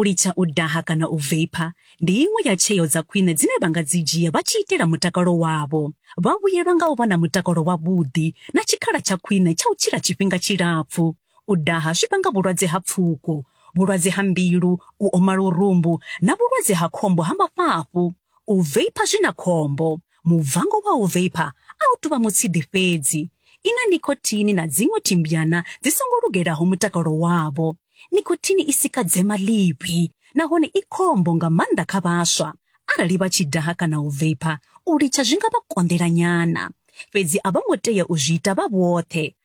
U litsha u daha kana u veipha ndi iṅwe ya tsheo dza khwine dzine vha nga dzi dzhia vha tshi itela mutakalo wavho. Vha vhuyelwa nga u vha na mutakalo wavhuḓi na tshikhala tsha khwine tsha u tshila tshifhinga tshilapfu. U daha zwi vhanga vhulwadze ha pfuko, vhulwadze ha mbilu, u oma lurumbu na vhulwadze ha khombo ha mafhafhu. U veipa zwi na khombo. Mubvango wa u veipa a u tou vha mutsidi fhedzi. I na nicotine na dziṅwe thimbyana dzi songo lugelaho mutakalo wavho. Nicotine i sika dzema ḽivhi nahone i khombo nga maanḓa kha vhaswa. Arali vha tshi daha kana u veipa, u litsha zwi nga vha konḓela nyana. Fhedzi a vho ngo tea u zwi ita vha vhoṱhe.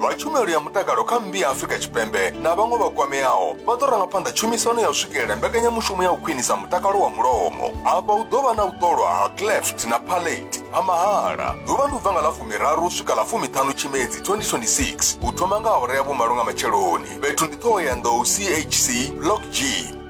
vha tshumelo ya mutakalo kha mmbi ya afurika tshipembe na vhaṅwe vha kwameaho vha ḓo ranga phanḓa tshumisano ya u swikelela mbekanyamushumo ya u khwinisa mutakalo wa mulomo afha hu ḓo vha na u ṱolwa ha cleft na palate ha mahala ḓuvha ndi u bva nga ḽa fumiraru u swika ḽa fumiṱhanu tshimedzi 2026 u thoma nga awara ya vhumalo nga matsheloni fhethu ndi ṱhoho ya nḓou chc block g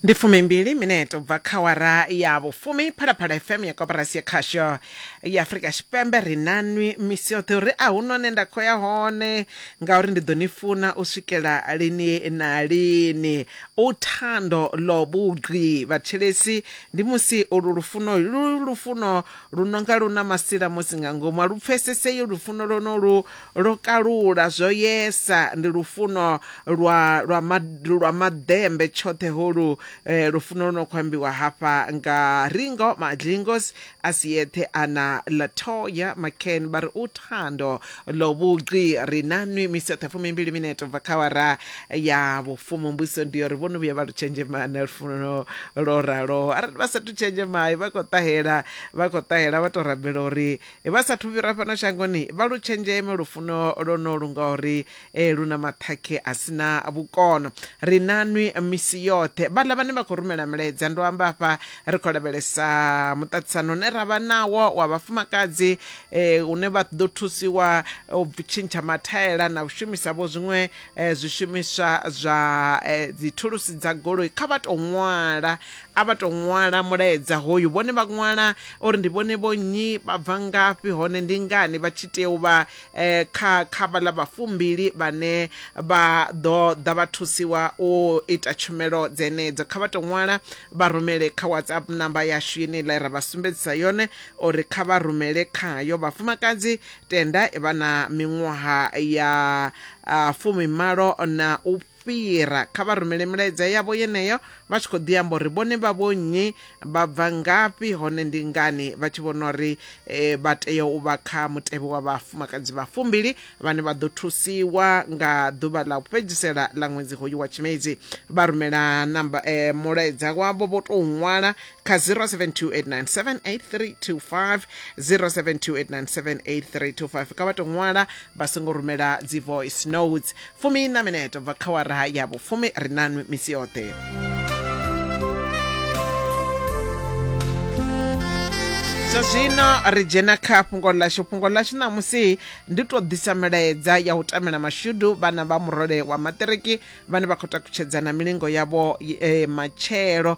ndi fumimbili mineto bva kha wara ya vhufumi phalaphala fm ya koporasi ya khasho ya afurika tshipembe ri nanwi misi yoṱhe uri a hu none nda khou ya hone ngauri ndi ḓo ni funa u swikela lini na lini u thando ḽo vhugqi vhathetshelesi ndi musi ulu lufuno lu lufuno lu nonga lu na masila musi nga ngomu a lu pfesesei lufuno lwonolu Lwo kalula, zwo yesa, ndi lufuno lwa, lwa, ma, lwa maḓembe tshoṱhe holu, eh, lufuno lu no khou ambiwa hafha nga Ringo Madlingos a si eṱhe a na Latoya McCann vha ri uthando lo vhugqi ri na nwi misi yoṱhe fumimbili minete ubva kha wara ya vhufumu mbuiso ndi yo ri vho no vhuya vha lu tshenzhema na lufuno lwo raloho arali vha sathu tshenzhema vha khou ṱahela vha khou ṱahela vha tou rabela uri Vha sathu fhira fhano shangoni, vha lu tshenzheme lufuno lwonolu ngauri lu na maṱhakhe a si na vhukono. Ri na nwi misi yoṱhe. Vhaḽa vhane vha khou rumela milaedza, ndo amba afha ri khou lavhelesa muṱaṱisano une ra vha nawo wa vhafumakadzi une vha ḓo thusiwa u tshintsha mathaela na u shumisa-vho zwiṅwe zwishumiswa zwa dzithulusi dza goloi. Kha vha tou ṅwala A vha tou ṅwala mulaedza hoyu vhone vha ṅwala uri ndi vhone vho nnyi, vha bva ngafhi hone ndi ngani vha tshi tea u vha kha kha vhaḽa vha fumbili vhane vha ḓo ḓa vha thusiwa u ita tshumelo dzenedzo. Kha vha tou ṅwala vha rumele kha WhatsApp namba yashu yeneiḽa ra vha sumbedzisa yone uri kha vha rumele khayo. Vhafumakadzi tenda vha na miṅwaha ya fumimalo na u fhira kha vha rumele milaedza yavho yeneyo vha tshi khou ḓi amba uri vhone vha vho nnyi vha bva ngafhi hone ndi ngani vha tshi vhona uri eh, vha tea u vha kha mutevhe wa vhafumakadzi vha fumbili vhane vha ḓo thusiwa nga ḓuvha ḽa u fhedzisela ḽa ṅwedzi hoyu wa tshimedzi vha rumela namba eh, mulaedza wavho vho tou ṅwala kha 0728978325 0728978325 ka vha to ṅwala vha songo rumela dzi voice notes fumi na minete bva kha wara ya vhufumi ri nanwi misi yoṱhe zwa zwino ri dzhena kha fhungo ḽashu fhungo ḽashu ṋamusi ndi tou ḓisa milaedza ya u tamela mashudu vhana vha murole wa maṱiriki vhane vha khou takutshedzana milingo yavho e, matshelo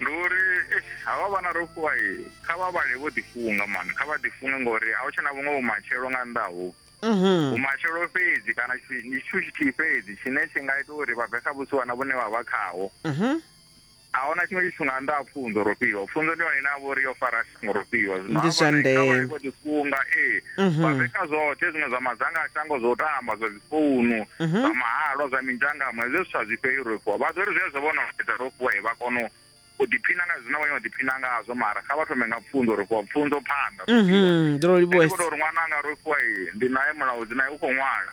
ndi uri havha vhana ro fhiwa kha vha vhale vho ḓifunga mani kha vha ḓifunge ngori a hu tshe na vhuṅwe vhumatshelo nga nnḓa ho mhm. vhumatshelo fhedzi kana ndi tshithu tshithihi fhedzi tshine tshi nga ita uri vha bve kha vhusiwana vhune vha vha khaho mhm. a huna tshiṅwe tshithu nga nnḓa ha pfunzo ro fhiwa pfunzo ndi yone ine a vha uri yo fara murofhiwa zwino Ndi zwa ndeme. vho ḓifunga ee Mhm. vha renga zwoṱhe zwiṅwe zwa madzanga a shango zwo tamba zwa dzifounu Mhm. zwa mahalwa zwa minzhangamo hezwo zwithu a zwi fheli rofhiwa vha zwori zwezwo vho no fhedza rofhiwa e vha kono u ḓiphina nga zwine vha nyanga u ḓiphina ngazwo mara kha vha thome nga pfunzo rofhiwa pfunzo phanḓa Mhm, ndi lwo Ndi livhuwesa. khou tou ri ṅwana anga rofhiwa ee ndi naye mulaudzi naye u khou ṅwala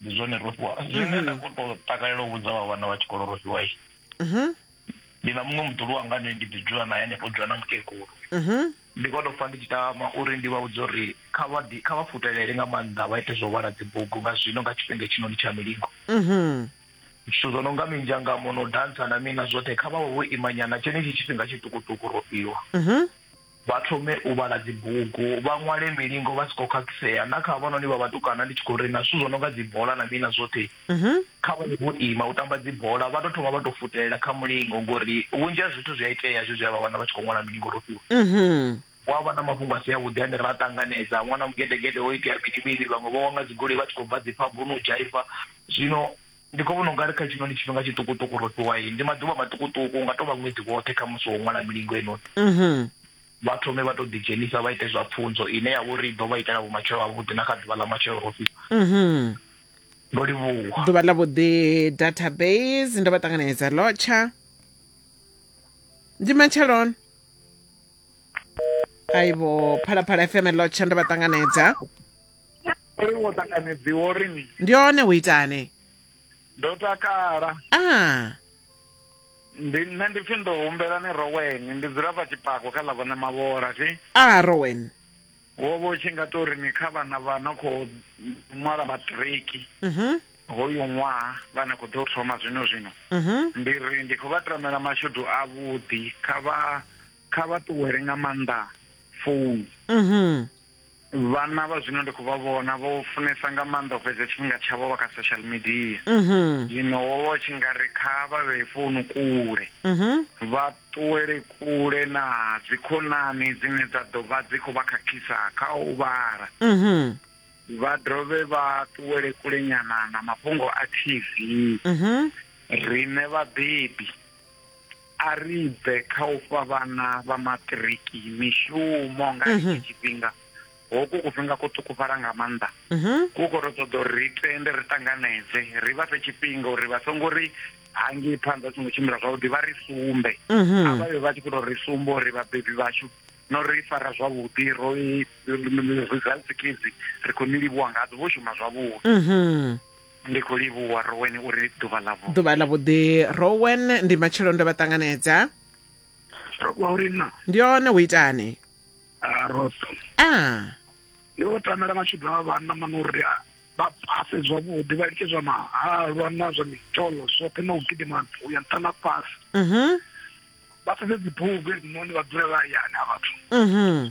ndi zwone ro fhiwa zwine nda khou tou takalela u vhudza vha vhana vha tshikolo ro fhiwa i ndi na muṅwe muḓulu wanga ane ndi ḓi dzula naye hanefho dzula na mukegulu ndi khou tou pfa ndi tshi tama uri ndi vha vhudze uri kha vha ḓi kha vha futelele nga maanḓa vha ite zwo vhala dzibugu nga zwino nga tshifhinga tshinoni tsha milingo zwithu zwo no nga minzhangamo no dantsa na mini na zwoṱhe kha vha vho imanyana tshenetshi tshifhinga tshiṱukuṱuku ro fhiwa Vha thome u vhala dzibugu, vha ṅwale milingo vha si khou khakhisea. Na kha havhanoni vha vhatukana ndi tshi khou ri na zwithu zwo no nga dzibola na mini na zwoṱhe, kha vha ye vho ima u tamba dzibola. Vha tou thoma vha tou futelela kha mulingo ngori vhunzhi ha zwithu zwi a itea hezwi zwe a vha wana vha tshi khou ṅwala milingo ro fhiwa. Hu a vha na mafhungo a si avhuḓi ane ra a ṱanganedza, ṅwana mugedegede ho itea mini mini, vhaṅwe vho wa nga dzigoloi vha tshi khou bva dzi phabuni u dzhaiva. Zwino. Ndi khou vhona u nga ri kha tshino ndi tshifhinga tshiṱukuṱuku, ro fhiwa iyi. Ndi maḓuvha maṱukuṱuku, hu nga tou vha ṅwedzi woṱhe kha musi wo ṅwala milingo heinoni. Vha thome vha tou ḓidzhenisa vha ite zwa pfunzo ine ya vha uri i ḓo vha itela vhumatshelo havhuḓi na kha ḓuvha ḽa matshelo ro fhiwa. Ndo livhuwa. Ḓuvha ḽa vhuḓi database ndo vha ṱanganedza lotsha ndi matsheloni aibo phalaphala fm lotsha ndo vha ṱanganedza uri wo ṱanganedziwa uri ni ndi one u itane ndo takala ah ndi nṋe ndi pfhi ndo humbela ni roweni ndi dzula pa tshipako kha ḽa vhone mavhola thi ah rowen wo vha u tshi nga tori ni kha vhana vha no khou ṅwala maṱiriki mhm hoyu ṅwaha vha na khou ḓo thoma zwino zwino mhm ndi ri ndi khou vha tamela mashudu avhuḓi kha vha kha vha ṱuwele nga maanḓa founu mhm vhana vha zwino ndi khou vha vhona vho funesa nga maanḓa u fhedza tshifhinga tshavho vha kha social media mhm. zwino wo vha tshi nga ri kha vha vhee founu kule mhm. vha ṱuwele kule na dzikhonani dzine dza ḓo vha dzi khou vha khakhisa kha u vhala mhm. vha dovhe vha ṱuwele kule nyana na mafhungo a tv rine vhabebi A ri bve kha u fha vhana vha maṱiriki mishumo nga mm-hmm. hetshi tshifhinga hoku kufhinga ko ṱukufhala nga maanḓa mm-hmm. ku khou ri ṱoḓa uri ri tende ri ṱanganedze ri vha fhe tshifhinga uri vha songo ri hangei phanḓa a songo tshimbila zwavhuḓi vha ri sumbe mm-hmm. a vha vhe vha tshi khou tou ri sumba uri vhabebi vhashu no ri fara zwavhuḓi ro results kids ri khou ni livhuwa ngadzo vho shuma zwavhuḓi mm-hmm. Ndi khou livhuwa Rowen uri ḓuvha ḽa vhu. Ḓuvha ḽa vhuḓi Rowen ndi matshelo ndo vha ṱanganedza. Rowa uri na. Ndi hone hu itani. Ah Rosa. Ah. Ndi vho tamela mashudu a vhanna mano uri vha pase zwavhuḓi vha litshe zwa mahalwa na zwa mitolo zwoṱhe na u gidima u ya nṱha na fhasi mhm. vha sedze dzibugu hedzinoni vha dzule vha hayani ha vhathu mhm.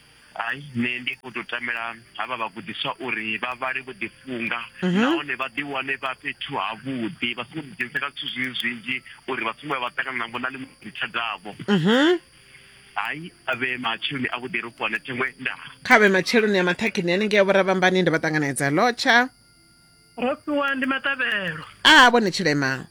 Hai, nṋe ndi khou tou tamela havha vhagudiswa uri vha vhale vho ḓifunga mhm. nahone vha ḓiwane vha fhethu havhuḓi vha songo ḓidzhenisa kha zwithu zwinzhi zwinzhi uri vha songo ya vha ṱangana navho na ḽiṅwe ḽitshadzavho mhm. hai a vhe matsheloni a vhuḓi ro fhiwane thengwe nda kha vhe matsheloni a maṱhakheni hanengei a vhoravhambani ndi vha ṱanganedza lotsha ro fhiwa ndi maṱavhelo a vhone tshilema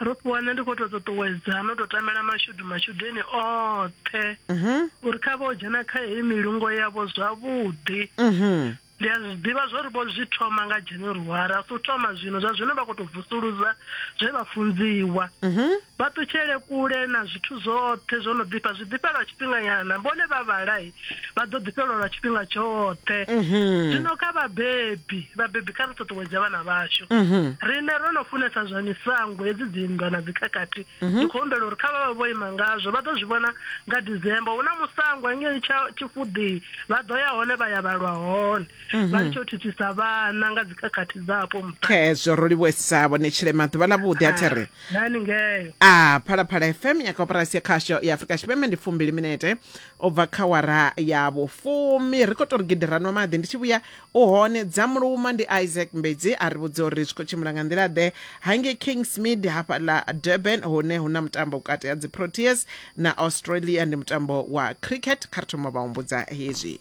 ro fhiwa nṋe ndi khou tou ṱuṱuwedza no tou tamela mashudu mashudeni oṱhe mhm. uri kha vha o dzhena kha heyi milungo yavho zwavhuḓi mhm. ndi a zwi ḓivha zwo ri vho zwi thoma nga january a si u thoma zwino zwa zwino vha khou tou vusuluza zwe vha funziwa mhm. vha ṱutshele kule na zwithu zwoṱhe zwo no ḓifha zwi ḓifhelwa tshifhinganyana vhone vha vhalai vha ḓo ḓifhelwa lwa tshifhinga tshoṱhe mhm. zwino kha vhabebi vhabebi kha ri ṱuṱuwedze vhana vhashu mhm. rine ro no funesa zwa misango hedzi dzinndwa na dzikhakhathi mhm. ndi khou humbela uri kha vha vha vho ima ngazwo vha ḓo zwi vhona nga december hu na musango engei tshifuḓii vha ḓo ya hone vha ya vhalwa hone vha litsho u thithisa vhana nga dzikhakhathi dzapo mukhezwo ro livhuesa vhone tshilema ḓuvha ḽa vhuḓi a ah, thiri nani ngeyo a ah, phalaphala fm ya koporasi ya khasho ya afrika tshipembe ndi fumbili minete u bva kha wara ya vhufumi ri khou tou ri gidi ra nwa maḓi ndi tshi vhuya u hone dza muluma ndi isaac mbedzi a ri vhudza uri zwi khou tshimbila nga nḓila ḓe hange kingsmid hafha ḽa durban hune hu na mutambo vhukati ha dziproteas na australia ndi mutambo wa cricket kha ri thoma vha humbudza hezwi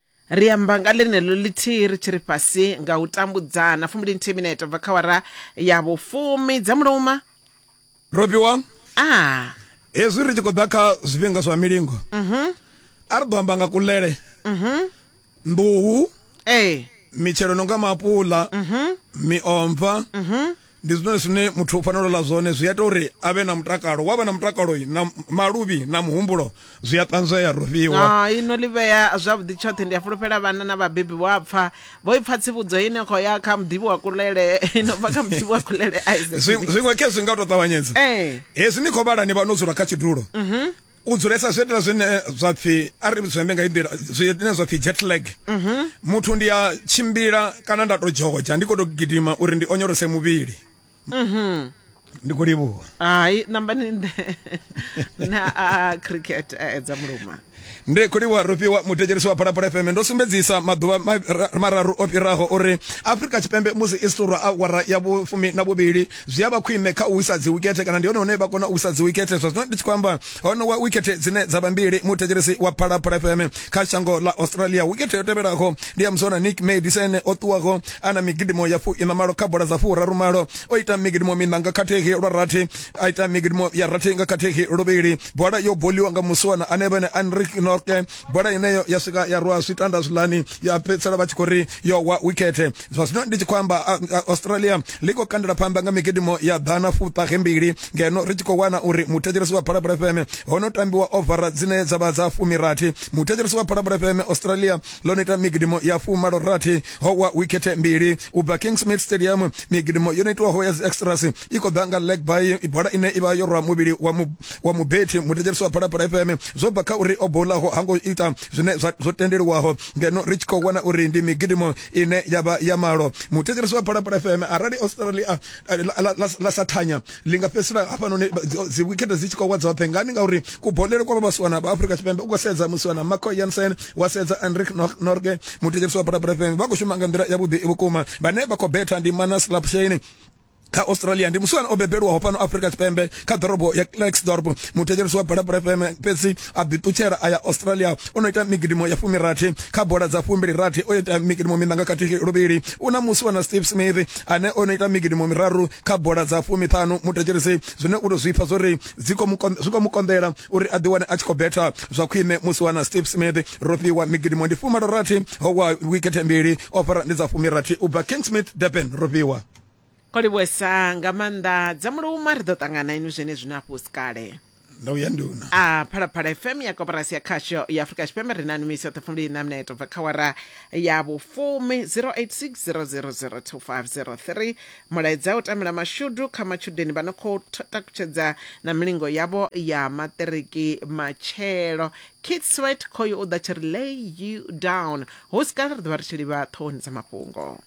ri amba nga ḽeneḽo ḽithihi ri tshi ri fhasi nga u tambudzana fumbili nthihi minete bva kha wara ya vhufumi dza muluma robiwa a hezwi ri tshi khou ḓa kha zwifhinga zwa milingo mhm. a ri ḓo amba nga kulele mhm. nḓuhu ee mitshelo no nga maapuḽa mhm. miomva ndi zwine zwine muthu u fanela ḽa zwone zwi ita uri a vhe na mutakalo wa vha na mutakalo na maluvhi na muhumbulo zwi a ṱanzwea rufhiwa ah, ino ḽi vhea zwavhuḓi tshoṱhe ndi a fulufhela vhana na vhabebi vho a pfa vho i pfa tsivhudzo ine khou ya kha muḓivhi wa kulele ino bva kha muḓivhi wa kulele zwiṅwe khe zwi nga tou ṱavhanyedza eh. hezwi ni khou vhala ni vha no dzula kha tshidulo mhm. u dzulesa zwiitela zwine zwa pfhi a ri zwembe nga inḓila zwine zwa pfhi jet lag mhm. muthu ndi a tshimbila kana nda to dzhodzha ndi khou to gidima uri ndi onyolose muvhili mhm. ndi khou livhuwa hai nambani nde na a cricket a edza muluma ndi khuliwa rufhiwa muthetshelisi wa phalaphala fm ndo sumbedzisa maḓuvha mararu o fhiraho uri afrika tshipembe musi i siṱurwa awara ya vhufumi na vhuvhili zwi a vha khwine kha u wisa dzi wikethe kana ndi hone hune vha kona u wisa dzi wikethe zwa zwino ndi tshi khou amba hone wa wikethe dzine dza vha mbili muthetshelesi wa phalaphala fm kha shango ḽa australia wikethe yo tevhelaho ndi ya musona nick madison o ṱuwaho a na migidimo ya fu ina malo kha bola dza furaru malo o ita migidimo mina nga khathihi lwa rathi a ita migidimo ya rathi nga khathihi luvhili bola yo boliwa nga musona ane vhene anrik norke bola ineyo ya swika ya rwa zwitanda zwiḽani ya fhedzisela vha tshi khou ri yo wa wikete zwa zwino ndi tshi khou amba australia ḽi khou kandela phanḓa nga migidimo ya ḓana fuṱahe mbili ngeno ri tshi khou wana uri muthetshelesi wa phalaphala fm ho no tambiwa ovara dzine dza vha dza fumirathi muthetshelesi wa phalaphala fm australia ḽo no ita migidimo ya fumalo rathi ho wa wikete mbili u bva kingsmid stadium migidimo yo no itiwaho ya dzi extras i khou ḓa nga legby i bola ine ivha yo rwa muvhili wa mu wa mubethi muthetsheliso wa phalaphala fm zwo bva kha uri o bolaho ha ngo ita zwine zwo tendeliwaho ngeno ri tshi khou wana uri ndi migidimo ine ya vha ya malo muthetsheliso wa phalaphala fm arali australia la sa thanya li nga fhedzisela hafhanoni dzi wikhethe dzi tshi khou wa dzoṱhe ngani ngauri kubolele kwa vha vhasiwana vha afrika tshipembe u khou sedza musiwana marco jansen wa sedza enrik norge muthetsheliso wa phalaphala fm vha khou shuma nga nḓila yavhuḓi vhukuma vhane vha khou betha ndi manas lapshane kha australia ndi musiwana o bebelwaho fhano afrika tshipembe kha ḓorobo ya clarksdorp muthetshelesi wa balapala fm fhedzi a ḓiṱutshela a ya australia o no ita migidimo ya fumirathi kha bola dza fumbili rathi o ita migidimo minanga khathihi luvhili u na musiwana steve smith ane o no ita migidimo miraru kha bola dza fumiṱhanu muthetshelesi zwine u to zwi pfa zwori zwi khou mu konḓela uri a ḓiwane a tshi khou betha zwa khwine musiwana steve smith ro fhiwa migidimo ndi fumalo rathi ho wa wikethe mbili o fara ndi dza fumirathi u bva king smith durban ro fhiwa o livhuwesa nga maanḓa dza muluma ri ḓo ṱangana inu zwenezwino afho si kale ndo vhuya nduna a phalaphala fm ya koporasi ya khasho ya afurika tshipembe ri na numisi yoṱhe fumbili na minete bva kha wara ya vhufumi 0860002503 mulaedza u tamela mashudu kha matshudeni vha no khou t- takutshedza na milingo yavho ya maṱiriki matshelo kit swet khoyo u ḓa tshi ri lay you down hu si kale ri ḓo vha ri tshi livha ṱhohoni dza mafhungo